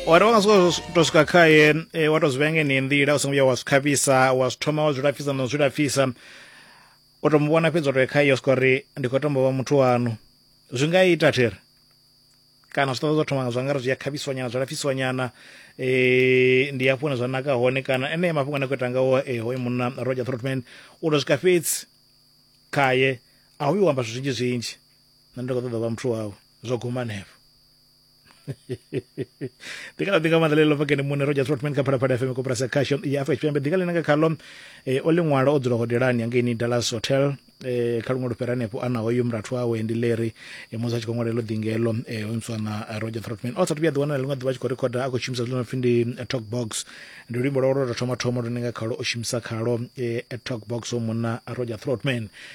wa ri wa nga sokou tou swika khaye e, wa tou zwi vhenge ni nḓila u songo vhuya wa zwi khavhisa wa zwi thoma wa zwi lafhisa na u zwi lafhisa u tou mu vhona fhedzi wa tou khaye u swika uri ndi khou tombo vha muthu wanu zwi nga ita thiri kana zwi ṱoḓa zwa thoma zwa nga ri zwi a khavhiswa nyana zwa lafhiswa nyana um ndi hafho hune zwa naka hone kana enea mafhungo ane a khou ita ngawo e, hoyo munna roger trotman u tou swika fhedzi khaye a hu yo amba zwithu zwinzhi zwinzhi nṋe ndi khou ṱoḓa vha muthu wawe zwo guma hanefho ndi kha ḓi nga maanḓa ḽeḽo vhakene muṋe roja trotman kha phalaphala fm koporasi ya khasho ya afurika tshipembe ḓinga ḽine nga khaḽo eh, o ḽiṅwalo o dzula hodelani hangeini dallas hotel eh, kha luṅwe lufhera hanefho ana hoyu murathu wawe ndi leri eh, musi a tshi khou ṅwalelo ḓingelo eh, hoyu muswana eh, roger trotman o sathu vhuya ḓiwana na ḽiṅwe ḓuvha a tshi khou rekhoda a khou shumisa zwino pfi ndi eh, talk box ndi luimbo lwawe lwa tou thoma thoma lune nga khalo o shumisa khalo eh, talk box o munna roger trotman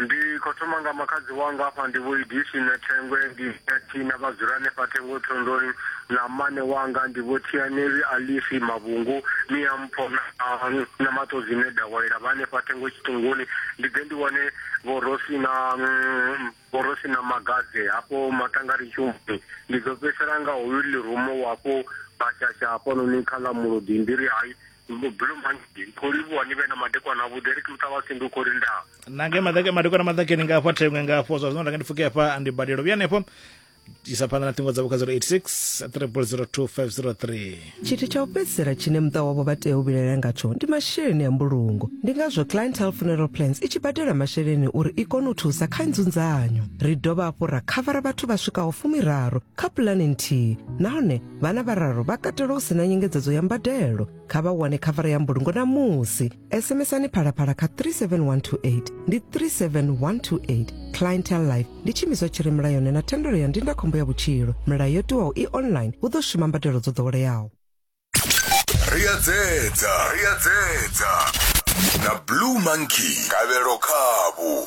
Ndi khou thoma nga makhadzi wanga afha ndi vho Idisi na Thengwe ndi Ati na vha dzula hanefha Thengo Thondoni na mmane wanga ndi vho Thianeli Alisi Mavhungu Miampho na na Maṱodzi ne Dawayila vha hanefha Thengo Tshiṱunguni ndi ḓe ndi wane vho Rosi na vho Rosi na Magadze hafho Maṱangari Tshumbi ndi ḓo fhedzisela nga hoyu Lirumo wafho Bashasha hafhanoni kha ḽa Mulodi ndi ri hai Belo manzhi khou livhuwa ni vhe na madekwana avhuḓi ri kiluṱa vhasi ndi u khou lindaa na nge madaka madekwana maḓakeni nga hafha thengwe nga hafho zwa zwino nda nga ndi pfuke hafha ndi badelo vhuya hanefho isa phanḓa na ṱhingo dzavho kha 086 302503 tshithu tsha u fhedzisela tshine muṱa wavho vha tea u vhilaela ngatsho ndi masheleni a mbulungo ndi ngazwo clientele funeral plans i tshi badela masheleni uri i kone u thusa kha nzunzanyo ri dovha hafhu ra khavara vhathu vha swikaho fumiraru kha pulane nthihi nahone vhana vhararu vha katelwa u si na nyengedzedzo ya mbadelo kha vha wane khavara ya mbulungo na musi sms-ani phalaphala kha 37128 ndi 37128 clientel life ndi tshimiswa tshi re mulayoni na thendelo ya ndindakhombo ya vhutshilo milayo yo tiwaho i online hu ḓo shuma mbadelo dzo ḓoweleaho ri a dzedza ri a dzedza na blue monkey kavhelo khavhu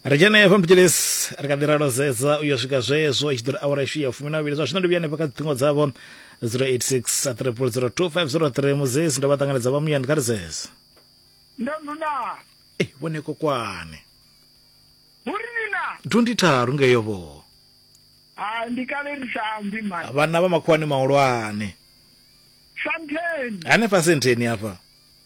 ri dzhene efha mphitshilisi ri kha ḓi ralo zedza u yo swika zwezwo i tshi ḓo ri awara ishu ya fumi na vhili zwa zwino ndi vhuya hanefha kha dziṱhingo dzavho 086 triple 02503 muzesi ndo vha ṱanganedza vha muyani kha ri zeze ndo nduna ei vhone kokwane huri nina 23 ngeyo vho ha ndi kale ri sa ambi mani vhana vha makhuwani mahulwane santheni hanefha sentheni hafha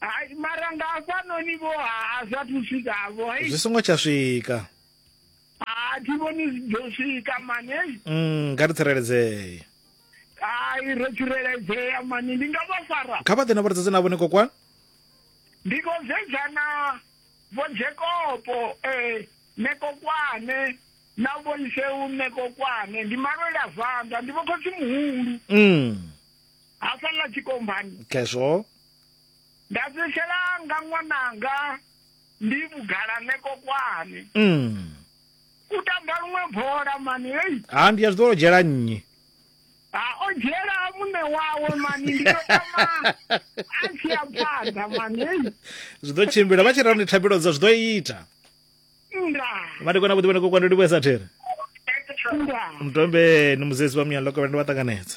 hai mara nga hafhanoni vho a zwa thu swika vho hai zwi songo tsha swika a thi vhoni zwi ḓo swika mani hei mm nga ri tsireledzee hai ro tsireledzea mani ndi nga vha fara kha vha ḓe na vhuredzedze navho ni kokwana ndi khou sedzana vho jekopo um eh, nekokwane na vho iseu nekokwane ndi malwela zwanḓa ndi vho khotsi muhulu mm ha sala tshikombani khezwo nda fhedzisela nga ṅwananga ndi vhugala neko kwani mm. u tamba luṅwe bola mani hei ha ndi ya zwi ḓo dzhela nnyi ha o dzhela muṋe wawe mani ndi ḓo tama a tshi ya phanḓa mani hei zwi ḓo tshimbila vha tshi rani thabelo dza zwi ḓo ita nda vha ndi kona vhuḓi vhane kokwando ndi vhuesa there nda ndombeni muzezi wa muyani lokovela ndi vha ṱanganedza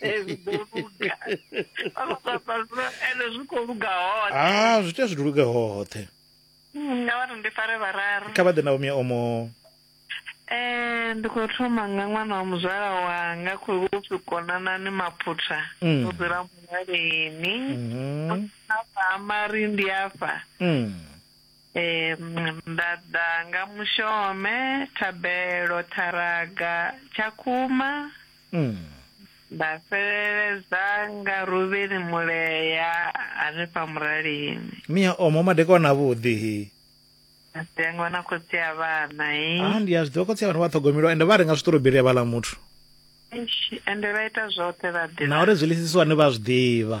Hezwi ḓo luga. Ano papa zwi- ende zwi khou luga hoṱhe. ah zwi tea zwi luge hoṱhe Mm, Nga vhari ndi fare vhararu. kha vha ḓe na vhomia omo Eh, ndi khou thoma nga ṅwana wa muzwala wanga khou upfi konanani maphutha. Mm. Ndo dzula muhaleni. Mhm. Afha ha mari ndi afha. Mm. Ee, nda ḓa nga mushome, thabelo, ṱharaga, tshakhuma, Mm. nda fheleledza nga Ruvheni Mulea hanefha Muralini. Mia omo madekwana avhuḓi hi. Masiangwa na khotsi ya vhana hi. Ah ndi a zwi ḓivha khotsi a vhana vha ṱhogomelwa ende vha renga zwiṱoroberi a vhala muthu. Eish, Ende vha ita zwoṱhe vha ḓi. Na uri zwi lisisiwa ni vha zwi ḓivha.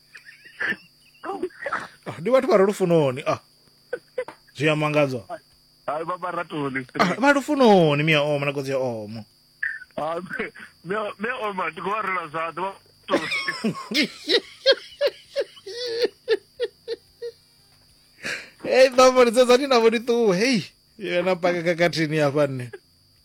Ah, ndi vhathu vha re lufunoni ah zwi a mangadza hayi vha maratoni ah, vha lufunoni mia oma na kodzi ya omo Ah, me- me- me oma ndi khou vha rela zwanḓa vha maratoni hei ṱambo ndi sedzani navo ndi ṱuwe hei yena paka kakathini hafha nne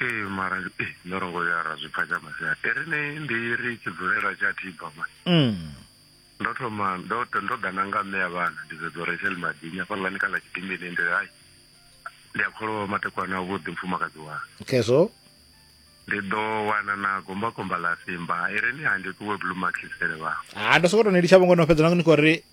ee mara ee ndo ro ngo ya ra zwi pfa tsha masia e ri ni ndi ri tshi dzulela tsha tiba ma mm. ndo thoma ndo ndo ḓa na nga mme ya vhana ndi zwe dzo rechel madini a fhaḽani kha ḽa tshidimbini ndi hai ndi a kholwa matekwana a vhuḓi mfumakadzi wa okay so ndi ḓo wana na gomba gomba ḽa simba i ri ni ha ndi ṱuwe blue mark sele vha ha ndo sokoto ni litsha vhongo no fhedza nango ni khou ri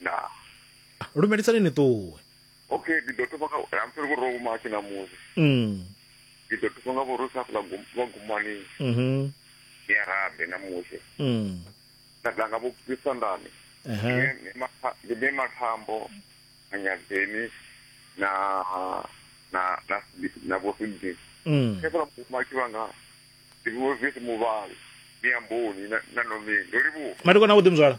ndaa lumelisani ni ṱuwe okay ndi ḓo thoma nga I'm sorry vhurwa vhuma tshi ṋamusi mm. ndi ḓo thoma nga vhurwa sa fula vhagumani mm -hmm. ni ya rabe ṋamusi mm. nda ḓa nga vhuphisandani ndi ne mathambo na nyadzeni na na na na vhosindini mm. khe fula vhuma tshi vhanga ndi vhuvisi muvhali ni amboni na nomini ndo livhuwa matikona vhuḓi muzwala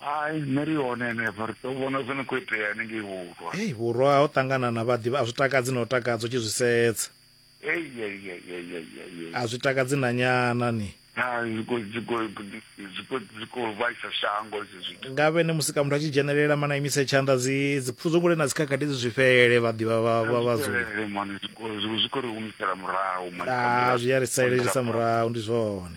hai nṋe ri hone henefha ri tou vhona zwo no khou itea hanengei vhurwa hei vhurwa ha u ṱangana na vhaḓivha a zwi takadzi na u takadza u tshi zwi sedza a zwi takadzi na nyana ni nga vhene musi ka muthu a tshi dzhenelela mana imise tshanḓa dzi dzipfuzo kule na dzikhakhathi dzi zwi fhele vhaḓivha vhadzulazwi a ri salelisa murahu ndi zwone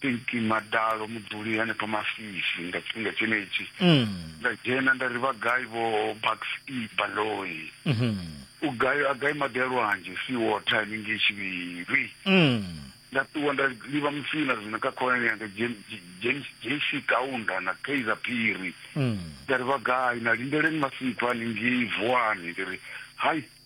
Pinky Madalo mudzuli hanefha Masisi nga tshifhinga tshenetshi mm. nda dzhena nda ri vha gai vho Bucks E Baloyi mm -hmm. u gai a gai maḓi a lwanzhe si water haningei Tshivhiri mm. nda ṱuwa nda livha musina zwino kha khonani yanga James JC Kaunda na Kaizer Phiri mm. nda ri vha gai na lindeleni masikhwa haningei Vuwani ndi ri hai